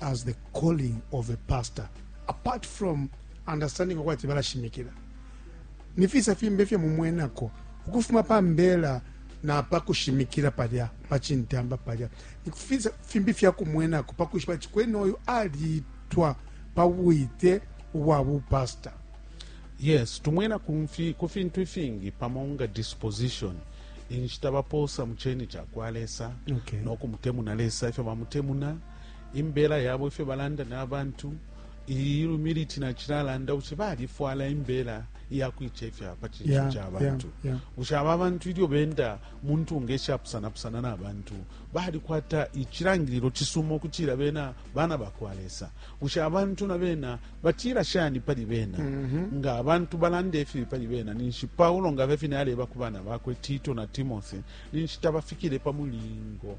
as the calling of a pastor apart from understanding okwati balashimikila ni fisa fimbi ifyo mumwenako ukufuma pa mbela napa kushimikila palya pachintamba palya ni fisa fimbi fya kumwenako pakushipa ati kwene oyu alitwa pa bwite ubwa bupasta yes tumwena ku fintu ifingi pamo nga disposition inshita bapoosa mu cheni cha kwa lesa okay. nokumutemuna lesa ifyo bamutemuna imbela yabo ifyo balanda na bantu iyi humility nacilalanda bushe balifwala imbela iyakuicefya pa cinso yeah, ca bantu yeah, yeah. bushe aba bantu ilyo benda muntu ngeshapusana-pusana na bantu balikwata icilangililo cisuma ukutila bena bana bakwa lesa bushe abantu na bena batila shani pali bena mm -hmm. nga abantu balanda ifibi pali bena ninshi paulo nga vefine aleba ku bana bakwe tito na timothy ninshi tabafikile pa mulingo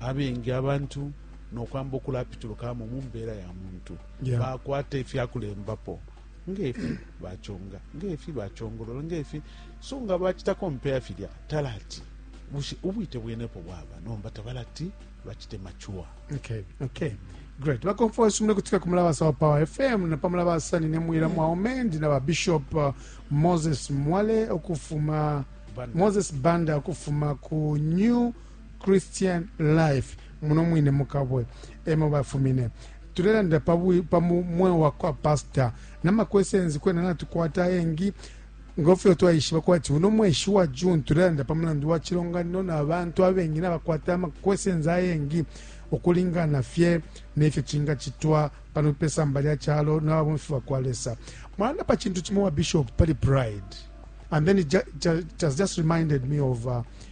abengi abantu nokwamba ukulapitulukamo mumbela ya muntu yeah. bakwata ifyakulembapo ngefi bachonga ngefi bachongolola ngefi so nga bachita kompea filya talati bushe ubwite bwenepo bwaba nomba tabalati bachite machua okay, okay. great bakomfosi mune kutika ku mulabasa wa power fm na pa mulabasa nine mwira mwaume ndi na babishop uh, moses mwale okufuma moses banda okufuma ku new Christian Life muno mwine mu Kabwe emo bafumine tulelandila pa bwi- pa mu- mweo wa kwa pasta na makwesenzi kwena natukwata ayengi ngofyo twaishiba kwati uno mweshi wa june tulelanda pa mulandu wa cilonganino na bantu abengi nabakwata amakwesenzi ayengi ukulingana fye nefyo cingacitwa pano pesamba lya calo na babomfi ba kwa lesa mwalanda pa cintu cimo wa bishop pali pride and then it ju- ju- it has just reminded me of uh,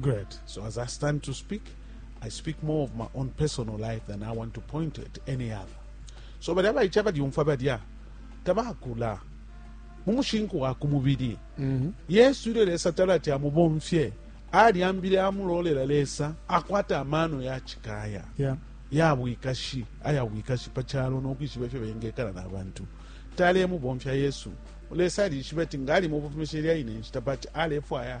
Great. So as I stand to speak, I speak more of my own personal life than I want to point at any other. So bali abaica balyumfwa balya tabakula mu mushinku wa ku mubiri mhm. yesu ilyo lesa tala ati amubomfye alyambile amulolela lesa akwata amaano ya cikaya yeah. ya bwikashi aya bwikashi pa calo n'okwishiba ifyo bengekala n'abantu talemubomfya yesu lesa alishiba ati ngaali mu bufumisha ilya ine nshita but alefwaya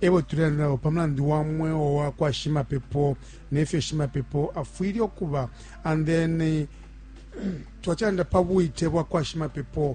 e bo tulelanda nabo pa mulandu wa mweo wa kwa shimapepo ne fyo shimapepo afwile ukuba and then twacilanda pa bwite bwa kwa shimapepo